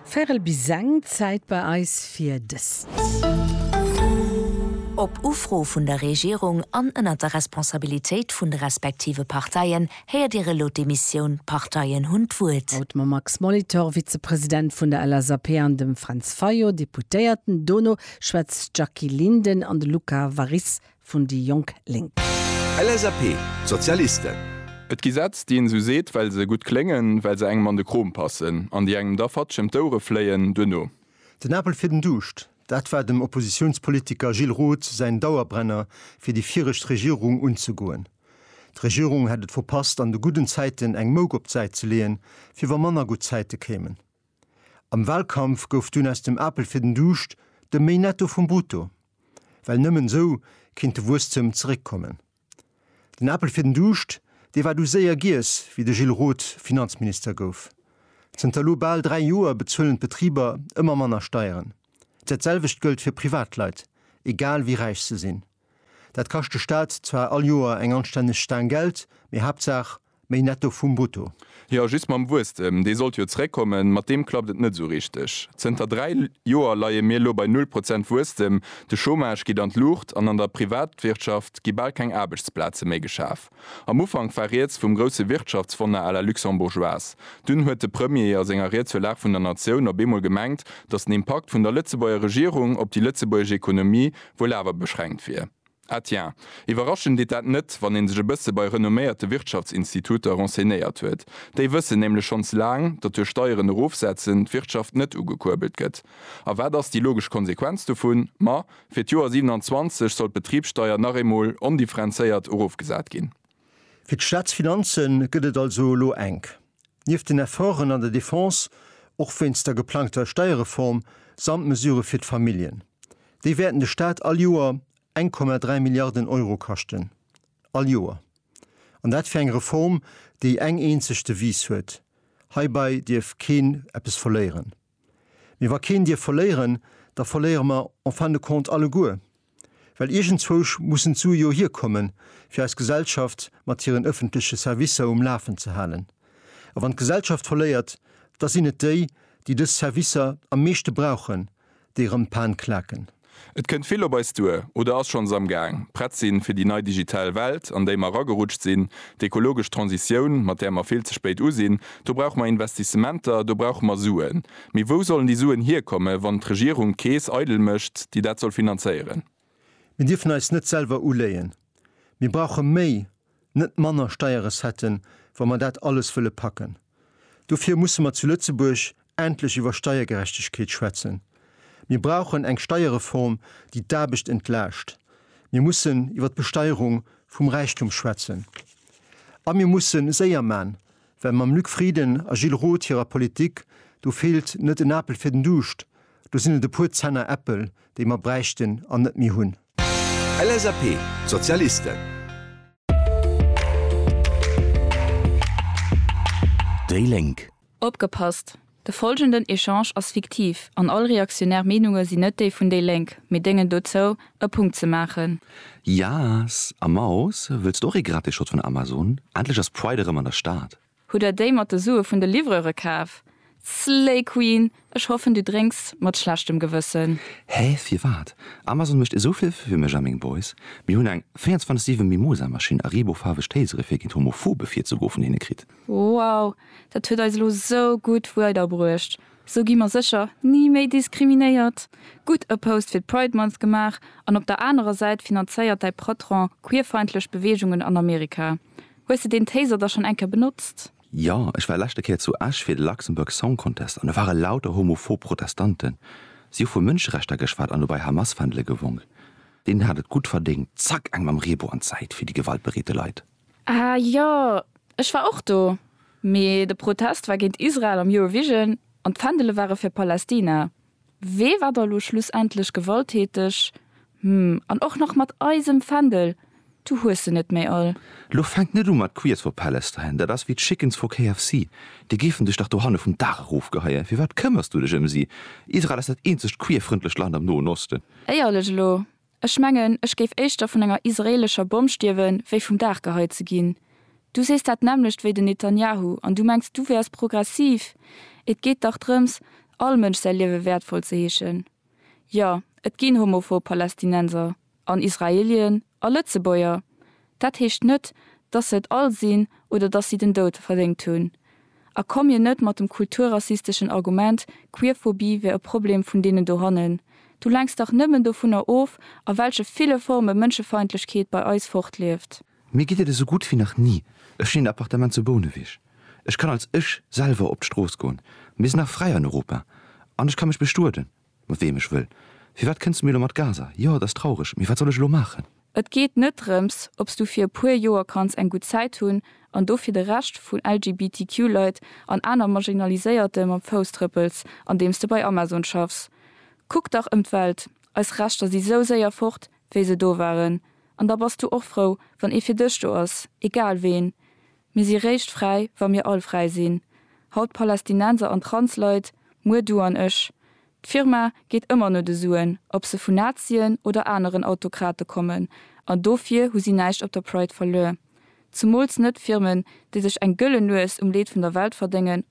Véirel bis seng, Zäit bei eis fir dëst. Op Ufro vun der Regierung an ënnert der Responsabilitéit vun de respektive Parteien héiert Dir elo d'Emissioun D'Parteien hunn d'Wuert. Haut mam Max Molitor, Vizepresident vun der LSAP, an dem Fränz Fayot, Deputéierten. Dono schwätzt d'Jackie Linden an de Luca Warisse vun déi jonk Lénk. LSAP, Sozialisten. Et gi Sätz, déi een esou seet, well se gutt kléngen, well se engem an de Krom passen, an déi engem da fatsch ëm d'Ouere fléien duerno. Den Apel fir den Duuscht, dat war dem Oppositiounspolitiker Gilles Roth säin Dauerbrenner fir déi viregt Regierung unzegoen. D'Regierung hätt et verpasst an de gudden Zäiten eng Mouk op d'Säit ze leeën, fir wa manner gutt Zäite kéimen. Am Wahlkampf gouf dunn aus dem Apel fir den Duuscht de méi Netto vum Brutto, well nëmmen esou kéint de Wuesstem zeréckkommen. Den Apel fir den Duuscht, dee war du séier giess, wéi de Gilles Roth Finanzminister gouf. Zënter elo bal 3 Joer bezuelen d'Betriber ëmmer manner Steieren. Dat selwecht gëllt fir Privatleit, egal wéi räich se sinn. Dat kascht de Staat zwar all Joer eng anstänneg Staang Geld, mee Haaptsaach méi Netto vum Brutto. Jo, just mam Wuesstem, dee sollt jo zréckkommen, mat deem klappt et net esou richteg. Zënter dräi Joer leie mir elo bei null Prozent Wuesstem, de Chômage geet an d'Luucht an an der Privatwirtschaft gi bal keng Aarbechtsplaze méi geschaf. Am Ufank war rieds vum grousse Wirtschaftswonner à la luxembourgeoise. Dunn huet de Premier a senger Ried zur Lag vun der Natioun op eemol gemengt, datt den Impakt vun der Lëtzebuerger Regierung op déi lëtzebuergesch Ekonomie wuel awer beschränkt wier. Ah tiens, iwwerraschen deet dat net, wann ee sech e bësse bei renomméierte Wirtschaftsinstituter renseignéiert huet. Déi wëssen nämlech schonns laang, datt duerch Steieren erofsetzen d'Wirtschaft net ugekuerbelt gëtt. A wat ass déi logesch Konsequenz dovun? Ma, Fir d'Joer 27 soll d'Betribssteier nach eemol ondifferenzéiert erofgesat ginn. Fir d'Staatsfinanze gëtt et also elo enk. Nieft den Efforten an der Defense, och wéinst der geplangter Steierreform, samt Mesurë fir d'Familljen. Déi wäerten de Staat all Joer eng Komma dräi Milliarden Euro kaschten. All Joer. An dat fir eng Reform, déi eng eenzeg Devise huet, Heibai dierf keen eppes verléieren. Mee wa keen dierf verléieren, da verléiere mer en fin de compte alleguer. Well iergendzwou mussen d'Sue jo hierkommen, fir eis Gesellschaft mat hiren ëffentleche Servicer um Lafen ze halen. A wann d'Gesellschaft verléiert, da sinn et déi, déi dës Servicer am meeschte brauchen, déi erëm d'Pan klaken. Et kënnt vill op eis duer oder ass schonns am Gaang. Prett sinn fir déi nei digital Welt, an déi mer eragerutscht sinn, d'ekologesch Transitioun, mat där mer vill ze spéit u sinn, do brauche mer Investissementer, do brauche mer Suen. Mee wou sollen déi Suen hierkomme wann d'Regierung d'Keess eidel mécht, déi dat soll finanzéieren? Mir dierfen eis net selwer uléien. Mir brauche méi net manner Steierrecetten, wa mer dat alles wëlle packen. Dofir musse mer zu Lëtzebuerg endlech iwwer Steiergerechtegkeet schwätzen. Mir brauchen eng Steierreform, déi d'Aarbecht entlaascht. Mir mussen iwwer d'Besteierung vum Räichtum schwätzen. A mir musse séier man, well mam Luc Frieden a Gilles Roth hirer Politik, do feelt net en Apel fir den Duuscht, do sinn et e puer Zenner Äppel, déi mer bräichten an net méi hunn. LSAP, d'Sozialisten. Déi Lénk. Opgepasst! De folgenden Echange ass fiktiv an all reaktionär Meenunge sinn net déi vun déi Lénk, mee déngen dozou, e Punkt ze maachen. Yas a Maus, wëlls du och ee gratis Shot vun Amazon? Endlech ass Pride erëm an der Stad! Hutt der déi mat de Sue vun de Livreure kaf? Slay Queen! Ech hoffen du drénks mat schlechtem Gewëssen. Hä, firwat? Amazon mécht esou vill fir mech a meng Boys. Mir hunn eng 24 7 Mimosa Maschinn a Reebou faarweg Tasere fir géint Homophobe virzegoe vun hinne kritt. Wow, dat huet eis elo sou gutt weider bruecht. Sou gi mer sécher ni méi diskriminéiert. Gutt e Post fir d'Pride Month gemaach an op der anerer Säit finanzéiert däi Patron queerfeindlech Beweegungen an Amerika. Hues de deen Taser da schonn eng Kéier benotzt? Jo, ech war leschte Kéier zu Esch fir de Luxembourg Song Contest an do ware lauter homophob Protestanten. Si hu vu Mënscherechter geschwat an dobäi Hamas-Fändele gewonk. Deen hat et gutt verdéngt, zack eng mam Reebou an d'Säit fir déi gewaltbereete Leit. Ah jo, ech war och do, mee de Protest war géint Israel am Eurovision an d'Fändele ware fir Palästina. Wee war da lo schlussendlech gewalttäteg? Hm, an och nach mat eisem Fändel? Du hues se net méi all. Lo fänkt net u mat Queers for Palestine, dat ass wéi d'Chickens for KFC, déi géifen dech dach dohanne vum Daach erofgeheien. Firwat këmmers du dech ëm si? Israel ass dat eenzegt queer-frëndlecht Land am Noen Osten. Éierlech elo, Ech mengen, ech géif éischter vun enger israeelescher Bomm stierwen, wéi vum Dag geheit ze ginn. Du sees dat nämmlecht wéi den Netanjahu an du mengs, du wäers progressiv? Et geet dach drëms, all Mënsch säi Liewe wäertvoll ze heeschen. Jo, et ginn homophob Palästinenser an Israeelien a Lëtzebuerger, Dat heescht net, dass se et all sinn oder dass si den Doud verdéngt hunn. A komm mir net mat dem kulturrassisteschen Argument, Queerphobie wär e Problem vun deenen dohannen. Du lenks dach nëmmen dovunner of, a welche ville Forme Mënschefeindlechkeet bei eis fortlieft. Mir geet et esou gutt wéi nach ni. Ech sinn een Appartement zu Bouneweg. Ech kann als ech selwer op d'Strooss goen. Mir sinn nach fräi an Europa. An ech ka mech bestueden. Mat weem ech wëll. Firwat kënns du mir elo mat Gaza? Jo, et ass traureg, mee wat soll ech elo maachen? Et geet net drëms, obs du fir e puer Joer kanns eng gutt Zäit hunn an do fir de Rescht vun LGBTQ-Leit an aner Marginaliséierte mam Fouss trëppels, andeems de bei Amazon schaffs. Kuck dach ëm d'Welt, eis Rechter si sou séier fort, wéi se do waren. An da bass du och frou, wann ee fir dech do ass, egal ween. Mir si réischt fräi, wa mir all fräi sinn, haut d'Palästinenser an Transleit, muer du an ech. D'Firma geet ëmmer no de Suen, ob se vun Nazien oder aneren Autokrate kommen, an dofir hu si näischt op der Pride verluer. Zumools net Firmen, déi sech eng gëllen Nues um Leed vun der Welt verdéngen